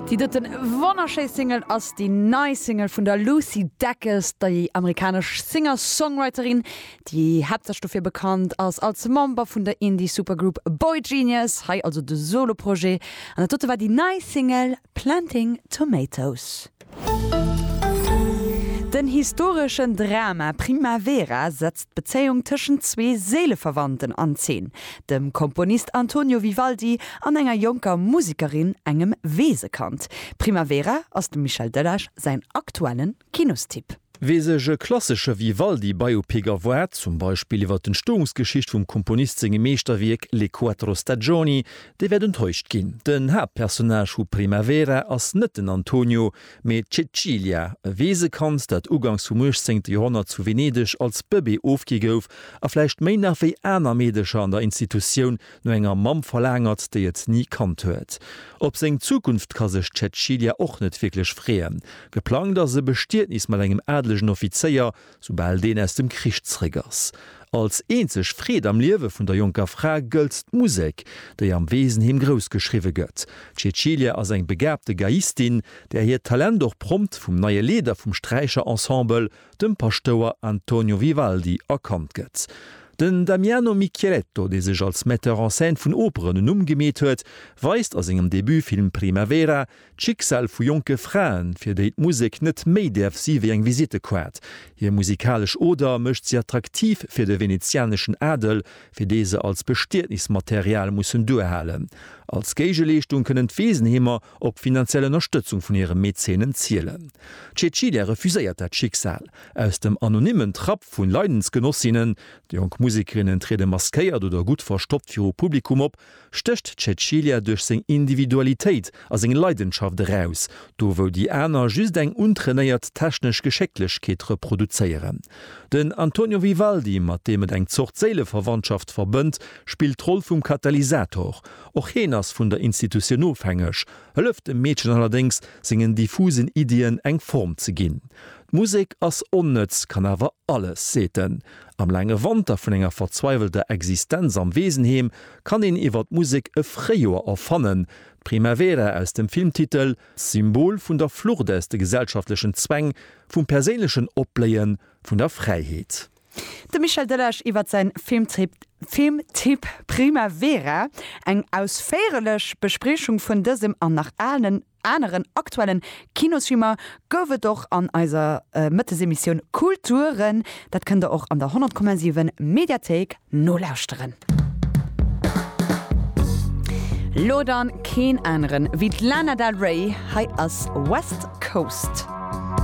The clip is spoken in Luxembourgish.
Déi doten wonnerschéi Single ass déi nei Single vun der Lucy Dacus, déi amerikanesch Singer-Songwriterin, déi haaptsächlech dofir bekannt ass als Member vun der Indie-Supergroup boygenius. Hei also de Solo-Projet an dat dote war déi nei Single Planting Tomatoes. Den historeschen Drama Primavera setzt d'Bezéiung tëschent zwee Séileverwandten an Zeen, dem Komponist Antonio Vivaldi an enger jonker Musekerin, engem Weesekand. Primavera ass dem Michel Delage säin aktuellen Kinostipp. Wee sech e klassesche Vivaldi-Biopic erwaart, zum Beispill iwwer d'Entstoungsgeschicht vum Komponist sengem Meeschterwierk Le quattro stagioni, dee wäert enttäuscht ginn. Den Haaptpersonnage vu Primavera ass net den Antonio, mee d'Cecilia, e Weesekand, dat ugangs vum uechtzéngte Joerhonnert zu Venedeg als Bëbee ofgi gouf a vläicht méi nach wéi aner Meedecher an der Institutioun No enger Mamm verlaangert, déi et ni kannt huet. Op seng Zukunft ka sech d'Cäcilia och net wierklech freeën. Geplangt ass e Bestietnis mat engem adelegen Offizéier, soubal deen aus dem Krich zeréck ass. Als eenzeg Freed am Liewe vun der jonker Fra gëllt d'Musek, déi am Weesenheem grouss geschriwwe gëtt. D'Cäcilia ass eng begaabte Geiistin, där hiert Talent och prompt vum neie Leeder vum Sträicherensemble, dem Paschtouer Antonio Vivaldi erkannt gëtt. Den Damiano Micheletto, dee sech als Metteur en scène vun Operen en Numm gemeet huet, weist a sengem Debutfilm Primavera d'Schicksal vu jonke Fraen, fir déi d'Musek net méi däerf si wéi eng Visittekaart. Hir musikalesch Oder mécht si attraktiv fir de venezianeschen Adel, fir dee se als Bestietnismaterial mussen duerhalen. Als Géigeleeschtung kënnen d'Weesenheemer Op finanziell Ënnerstëtzung vun hire Mäzenen zielen. D'Cecilia refuséiert dat Schicksal. Aus dem anonymmen Trapp vu Leidensgenossinnen, jonk Musekerinnen triede maskéiert oder gutt verstoppt viru Publikum op, stécht d'Cecilia duerch seng Individualitéit a seng Leidenschaft eraus, do wou déi aner just eng untrainéiert technesch Geschécklechkeet reproduzéieren. Den Antonio Vivaldi, mat deem et eng Zort Séileverwandschaft verbënnt, spillt d'Roll vum Katalysator. Och heen ass vun der Institutioun ofhängeg, hëlleft dem Meedchen allerdéngs, sengen diffusen Iddien eng Form ze ginn. D'Musek ass onnëtz, kann awer alles, seet en. Am laange Wanter vun enger verzweiwelter Existenz am Weesenheem kann een iwwer d'Musek e Fréijoer erfannen. D'Primavera aus dem Filmtitel, Symbol vun der Flucht aus de gesellschaftlechen Zwäng, vum perséinlechen Opbléien, vun der Fräiheet. De Michel Delage iwwer säin Filmtipp Filmtipp Primavera, eng ausféierlech Bespriechung vun dësem an nach aalen aneren aktuellen Kinosfilmer gouf et och an eiser Mëttesemissioun Kulturen. Dat kënnt der och an der 100,7 Mediathéik nolauschteren. Lo dann keen aneren wéi d'Lana Del Rey, hei ass West Coast.